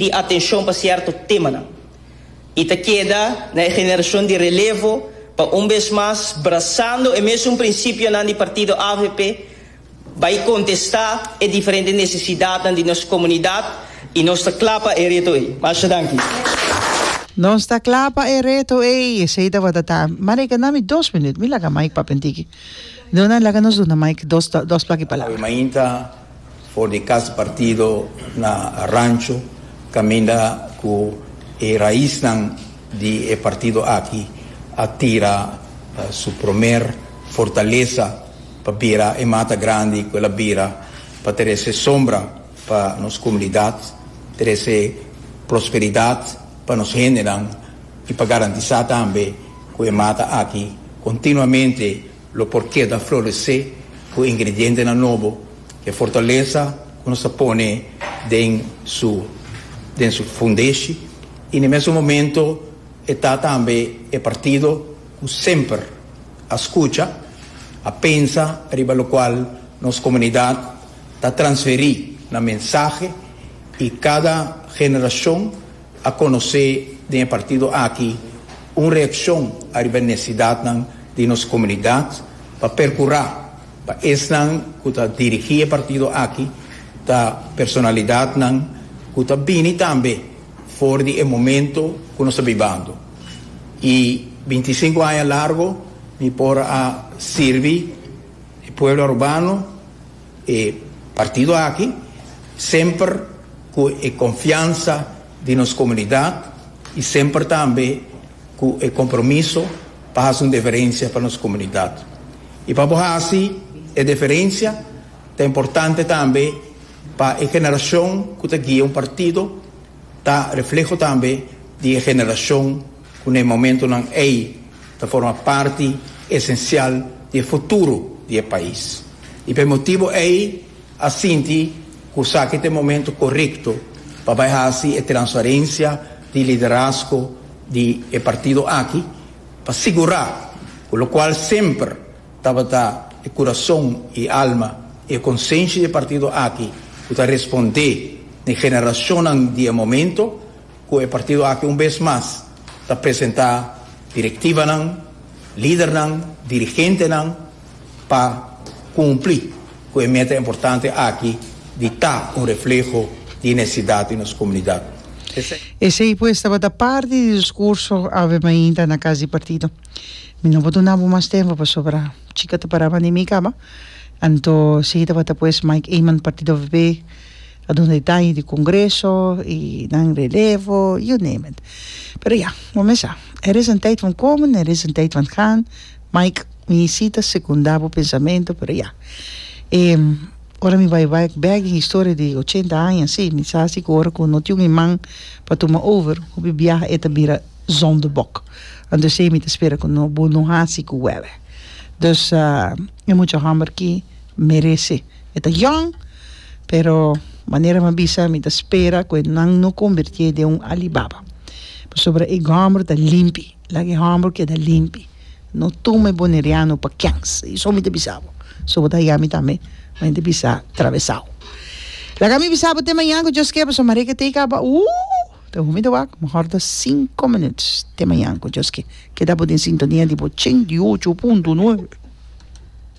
di atenshon pa sierto temanan i ta keda na e generashon di relevo pa un bes mas, brasando e mesun prinsipionan di partido avp, bai kontestá e diferente nesesidatnan di nos komunidat i nos ta kla pa e reto ei. Masha danki. Nos ta kla pa e reto ei. Esei tabata ta. Mari, e keda mi dos minüt. Mi laga Mike papia ntiki. Duna, laga nos duna Mike dos dos plaki palabra. Mainta For di kas partido na rancho kaminda ku e raisnan di e partido aki a tira su promer fortalesa pa bira e mata grandi ku el a bira pa trese sombra pa nos komunidat, trese prosperidat pa nos hendenan i pa garantisá tambe ku e mata aki kontinuamente. Lo por keda floresé ku ingredientenan nobo, e fortalesa ku nos a pone den su den su fundeshi i na e mesun momento e ta tambe e partido ku semper a skucha, a pensa riba lokual nos komunidat ta transferí nan mensahe i kada generashon. a conoce den e partido aki un reaccion ariba e necesidadnan di nos comunidad pa percura pa esnan cu ta dirigi e partido aki ta personalidadnan cu ta bini tambe for di e momento cu nos ta bibando y binti i sinku aña largo mi por a sirbi e pueblo Arubano E partido aki, semper cu e confiansa di nos comunidad y semper tambe cu e compromiso pa haci un diferencia pa nos comunidad. Y pa bo haci e diferencia ta importante tambe pa e generacion cu ta guia un partido ta refleho tambe di e generacion. ku na e momentunan ei ta forma parti esensial di e futuro di e pais i pa e motibu ei a sinti ku esaki ta e momentu korekto pa bai hasi e transferensia di liderazgo di e partido aki pa sigurá ku lokual semper tabata e kurason i alma i e konsenshi di e partido aki ku ta respondé na e generashonnan di e momento Cu e partido aki un bes mas ta presenta directibanan, lidernan, dirigentenan pa cumpli cu e meta importante aki di ta un refleho di e necesidad di nos comunidad. Esey pues tabata parti di discurso awe mainta na cas di partido. Mi no por duna bo mas tempo pasobra chica ta para bandi mi caba. Anto esey tabata pues Mike Eman, partido VB. Adunde e daño di congreso y nan relevo, you name it. Pero ya, bo mes sa. Er is een tijd van komen en er is een tijd van gaan. Mike, mi sí ta secunda bo pensamento, pero ya. E, ora mi bai back back den historia di ochenta aña así, mi sa si cu ora cu no tin un iman pa tuma over, hopi biaha e ta bira zondebok. Anto esei mi ta spera cu no, bo no hasi cu wèwè. Dus, e mucha homber ki merece. E ta yòn, pero manera mi a bisa mi ta spera ku e nan no kombertié den un Alibaba. Pasobra e gòmber ta limpi, laga e hòmber keda limpi. No tuma e boneriano pa kèns. I so mi ta bisa bo. So bo ta haña mi tambe, ma mi ta bisa trabesau. Laga mi bisa bo te mañan ku Dios ke, pasobra Mareke tei kaba. Ooh! Ta hopi mi ta wak, mehor ta sinku minüts. Te mañan ku Dios ke. Keda bo den sintonia di bo ochenta i ocho punto nuebe.